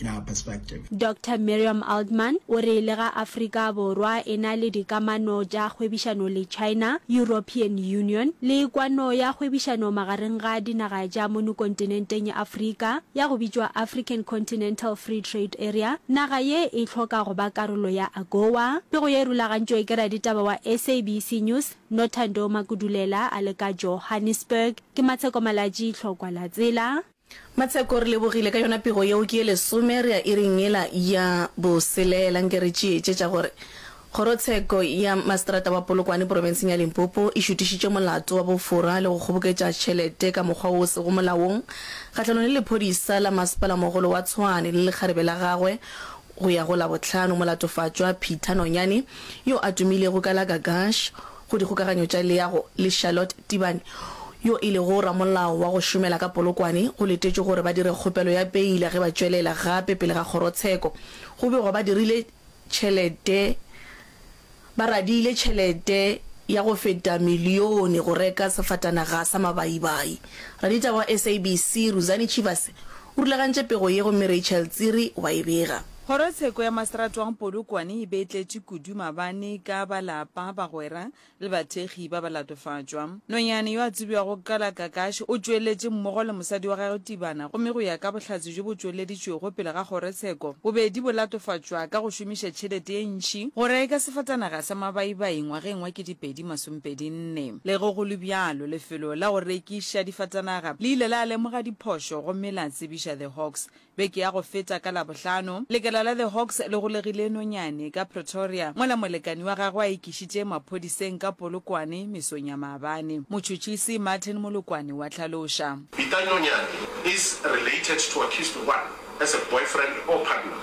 in our perspective. Doctor Miriam Altman o re le ga Afrika Borwa e na le dikamano tša kgwebišano le China, European Union le kwano ya kgwebišano magareng ga dinaga tša mono kontinenteng ya Afrika ya go bitšwa African Continental Free Trade Area, naga ye e hloka go ba karolo ya AGOA. Pego ye e rulagantšwe ke raditaba wa SABC News Nothando Makudulela a le ka Johannesburg. Ke Matsheko Malatji, Tlhokwa la Tsela. Matsheko, Re lebogile ka yona pego yeo. Ke ye lesome re ya iring yela ya boselela. Nke re tšeetšetša gore Kgorotsheko ya Maseterata wa Polokwane porofenseng ya Limpopo e šutišitše molato wa bofora le go kgoboketša tšhelete ka mokgwa o sego molaong kgahlanong le lephodisa la Masepala-mogolo wa Tshwane le lekgarebe la gagwe go ya go Labohlano. Molatofatšwa Peter Nonyane, yo a tumilego ka la Gagash, go dikgokaganyo tša leago le Charlotte Tibane, yo e lego ramolao wa go šomela ka Polokwane, go letetšwe gore ba dire kgopelo ya beile ge ba tšwelela gape pele ga kgorotsheko. Go begwa ba dirile tšhelete ba radiile tšhelete ya go feta milione go reka sefatanaga sa mabaibai. Raditaba wa SABC, Ruzani Chivase, o rulagantše pego ye gomme Rachel Tsiri wa e bega. Kgorotsheko ya Maseratwang Polokwane e be e tletše kudu mabane ka ba lapa, bagwera le bathekgi ba ba latofatšwa. Nonyane yo a tsebiwago ka la Kakashi o tšweletše mmogo le mosadi wa gagwe Tibana gomme go ya ka bohlatse bjo bo tšweleditšwego pele ga kgorotsheko bobedi bo latofatšwa ka go šomiša tšhelete ye ntši go reka sefatanaga sa mabaibai ngwageng wa ketepedi masompedi nne. Le ge go le bjalo lefelo la go rekiša difatanaga le ile la lemoga diphošo gomme la tsebiša The Hawks Beke ya go feta ka Labohlano, lekala la The Hawks le golegile nonyane ka Pretoria mola molekani wa gagwe a ikišitše maphodiseng ka Polokwane mesong ya maabane. Motšhotšhisi Martin Molokwane wa hlaloša. Peter Nonyane is related to accused one as a boyfriend or partner.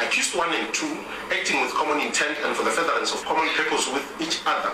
Accused one and two acting with common intent and for the furtherance of common purpose with each other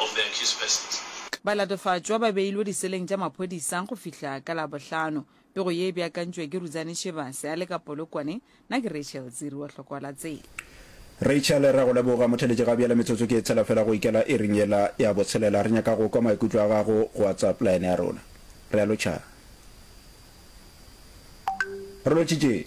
of the accused persons. Balatofatšwa ba beilwe diseleng tša maphodisa go fihla ka Labohlano. Pego ye e beakantšwe ke Rudzani Shivase a le ka Polokwane, na ke Rachel Dziri wa Tlhokoalatsela. Rachel, re a go leboga. Motheletši, ga bjale metsotso ke e tshela fela go ikela iring yela ya botshelela. Re nyaka go kwa maikutlo a gago go WhatsApp line ya rona. Re a lotšhana. Re lotšitše.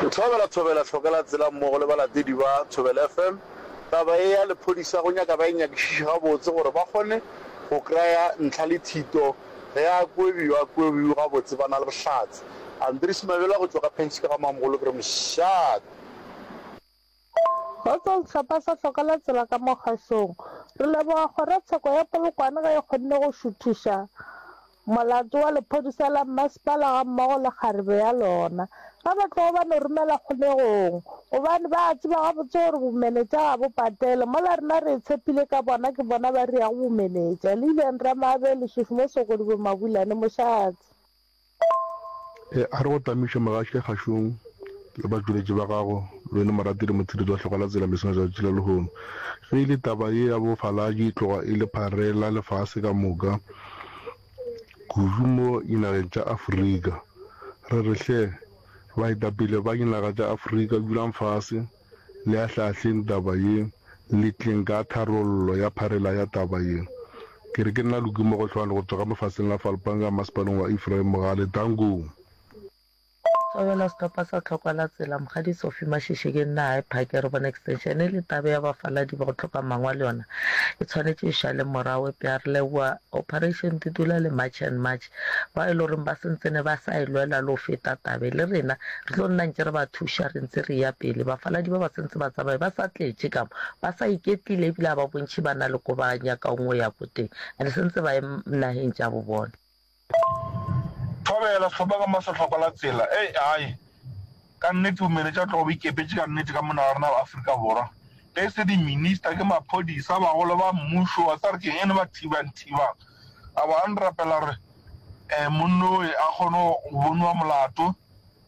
Ke thobela Thobela Tlhokela tsela mmogo le balatedi ba Thobela FM taba e ya lephodisa go nyaka ba e nyakišiše gabotse gore ba kgone go kraya ntlha le thito ge a kwebi yo a kwebiw gabotse ba na le bohlatse. Andries Mabela go tšwa ka Penskei ga Mamogolo ke re mošate. Go tswa sehlopha sa hloka la tsela ka mo kgašong. Re leboga kgorotsheko ya Polokwane ge e kgonne go šuthiša molato wa lephodisa la mmasepala gammogo le kgarebe ya lona. Ge ba tlogo ba no romela kgolegong gobane ba a tseba gabotse gore bomenetša ga bo patele. Mola rena re e tshepile ka bona ke bona ba re ya go bomenetša. Lilian Ramaabele, Shushmo Sokodibo, Mabulane, Mošate. A re go tamišwa mogatše kgašong le batšweletši ba gago, le wena morati le motsheditsi wa hlokwa la tsela mesong ya tšatši la lehono. Ge e le taba ye ya bofalatši e tloga e le pharela lefase ka moka, kudu mo dinageng tša Afrika. Re re hle, baetapele ba dinaga tša Afrika, dulang fase. Le ahlaahleng taba ye, le tleng ka tharollo ya pharela ya taba ye. Ke re ke nna Luki Mogohlwane go tšwa ka mafaseng a Falpanga Masepaleng wa Ephraim Mogale, Taung. Thobela sethopa sa Tlhokwa la Tsela, Mokgadi Sophie Mashishe ke nna High Park ya Rubona Extension e le taba ya bafaladi ba go hloka mangwalo yona e tshwanetše e šale morago epša re leboa Operation Dudula le March and March bao e le goreng ba se ntsene ba sa e lwela le go feta tabe. Le rena re tlo nna ntše re ba thuša re ntse re eya pele. Bafaladi ba ba se ntse ba tsamaye ba sa tletše ka mo, ba sa iketlile e bile ga ba bontšhe ba na le ko ba nyakago go ya ko teng and se ntse ba ye nageng tša bo bona. Thobela, Sehlopha ka mo Sehlokwa la Tsela, Ei, ai! Ka nnete, o mele tša tlogo o ikepetše ka nnete ka mona ga rena Afrika Borwa. Ge e se di minister, ke maphodisa, bagolo ba mmušo, wa tseba re keng ene ba thibang thibang. A ba re rapela gore um monno oe a kgone go boniwa molato,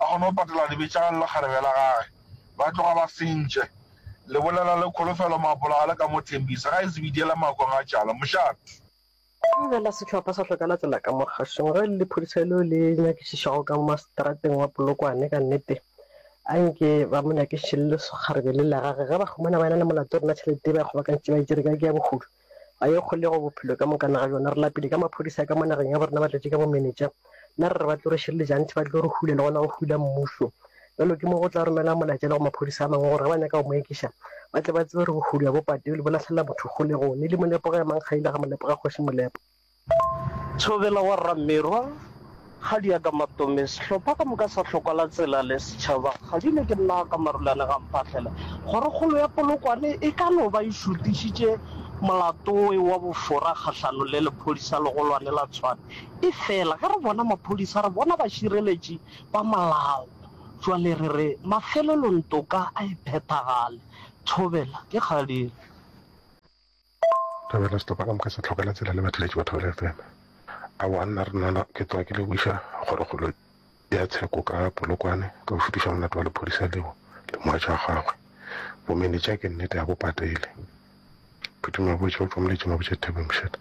a kgone go patela dibetšana le lekgarebe la gage. Ba tloga ba sentše. Le bolela le kholofelo, maapola ga le ka mo thembisa. Ga e se bidiyela makong a tšala. Mošate. Go be la sehlopha sa hloka la tsela ka mo kgašong ge le lephodisa leo le nyakišišago ka masetrateng wa Polokwane ka nnete a nke ba mo nyakišiše le lekgarebe le la gage ge ba humana ba ena le molato rena tšhelete e ba e kgobakantšitše ba e tšere kae ke ya bohudu ga e kgolego bophelo ka mokana ga bjona re lapile ka maphodisa ka mo nageng ya borena ba tletše ka bomenetša Nna re re ba tlo re šireletša gantši ba tlo re hula le gona go hula mmuso. Bjalo ke mo go tla romelwa molaetša le go maphodisa a mangwe gore ge ba nyaka go mo ekiša ba tle ba tsebe re bohulwa bo pateo le bo lahlelela motho kgolegone le molepo ga ya mang kgaile ga molepo ga kgoši molepo. Thobela wa Ramerwa, Ga di ya ka matome, sehlopha ka moka sa Hlokwala Tsela le setšhaba ga di le ke nna ka Marulane ga mphahlela gore kgolo ya Polokwane e ka no ba e šutišitše molatoe wa bofora kgahlano le lephodisa legolwane la Tshwane. Efela ge re bona maphodisa, re bona bašireletši ba molao. Bjale re re mafelelong toka a e phethagale. Thobela, ke kgadile. Thobela, Stop ka moka se tlhokela tsela le batheletši ba Thobela FM. Aowa, nna Rinono ke tloga ke leboiša kgorokgolo ya tsheko ka Polokwane ka go šutiša molato wa lephodisa leo le mogatša wa gagwe. Bomenetša ke nnete ga bo patele. Phuthing Mabotja o tšwa Moletšeng a botša Dithabeng Moshetla.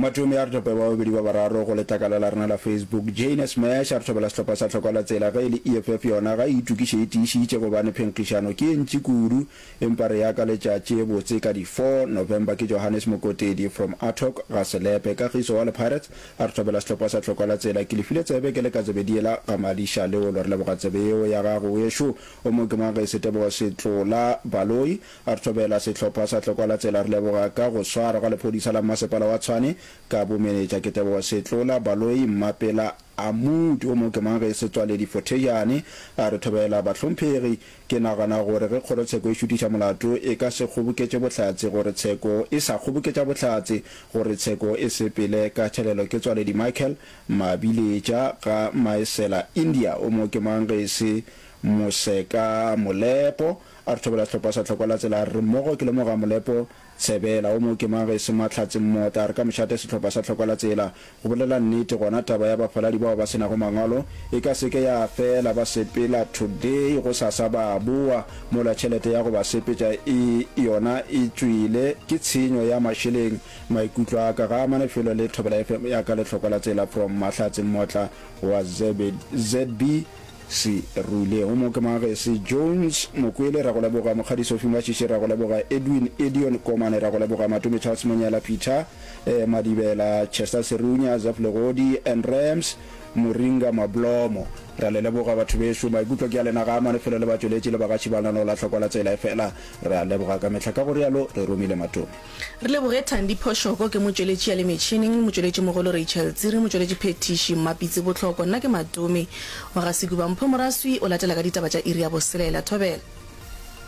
Mathomi a re thope ba babedi ba bararo go letlakala la rena la Facebook. Jane Smash a re thobela sehlopha sa Tlhokwalatsela ge e le EFF yona ga e itokiše e tiišitše gobane phenkgišano ke e ntši kudu empa re ya ka letšatši e botse ka di 4 November ke Johannes Mokotedi from Athock ga Selepe. Kagiso wa Lepirates a re thobela sehlopha sa Tlhokwalatsela ke le file tsebe ke le ka tsebe diela ga Madiša Leolo re leboga tsebe yeo ya gago weso o mo ke mang ge e se Tebogo Setlola Baloi A re thobela sehlopha sa Tlokolatsela re leboga ka go swarwa ga lephodisa la Mmasepala wa Tshwane ka bomenetša ke Tebogo Setlola, Baloyi, Mmapela, Amoudi o mongwe ke mang ge se Tswaledi Fothejane. A re thobela bahlomphegi, ke nagana gore ge kgorotsheko e šutiša molato e ka se kgoboketše bohlatse gore tsheko e sa kgoboketša bohlatse gore tsheko e sepele ka thelelo ke Tswaledi Michael Mabiletša ga Maesela India o mongwe ke mang ge se Moseka Molepo A re thobela tlhopha sa tlhokwa la tsela, a re re mmogo ke lemoga molepo, Tsebela, o mo ke mang ge e se Mahlatse mmota, a re ka mošate sehlopha sa tlhokwa la tsela. Go bolela nnete, gona taba ya bafaladi bao ba se nago mangwalo e ka se ke ya fela, ba sepela today, go sasa ba a boa, mola tšhelete ya go ba sepetša e yona e tšwile, ke tshenyo ya mašeleng. Maikutlo a ka ga a mane felo le Thobela FM ya ka le tlhokwa la tsela from Mahlatse mmotla wa ZB Se ruilego mo ke Magesi Jones Mokwele, ra go leboga Mokgadi Sophie Mashishi, ra go leboga Edwin Edion Komane, ra go leboga Matome Charles Monyela, Peter Madibela, Chester Serunya, Zeph Legodi and Rams Moringa Mablomo. Ra le leboga batho bešo. Maikutlo ke a lena ga a mane felo le batšweletši le bagaši ba lena no la hlokwa la tsela efela. Re a leboga ka mehla, ka go realo Re romile Matome. Re leboge Thandi Phoshoko, ke motšweletši ya le metšhineng, motšweletšimogolo Rachel Tsiri, motšweletši phethiši Mmapitsi Botlhoko, nna ke Matome wa ga Sekuba. Mpho Moraswi o latela ka ditaba tša iri ya boselela. Thobela.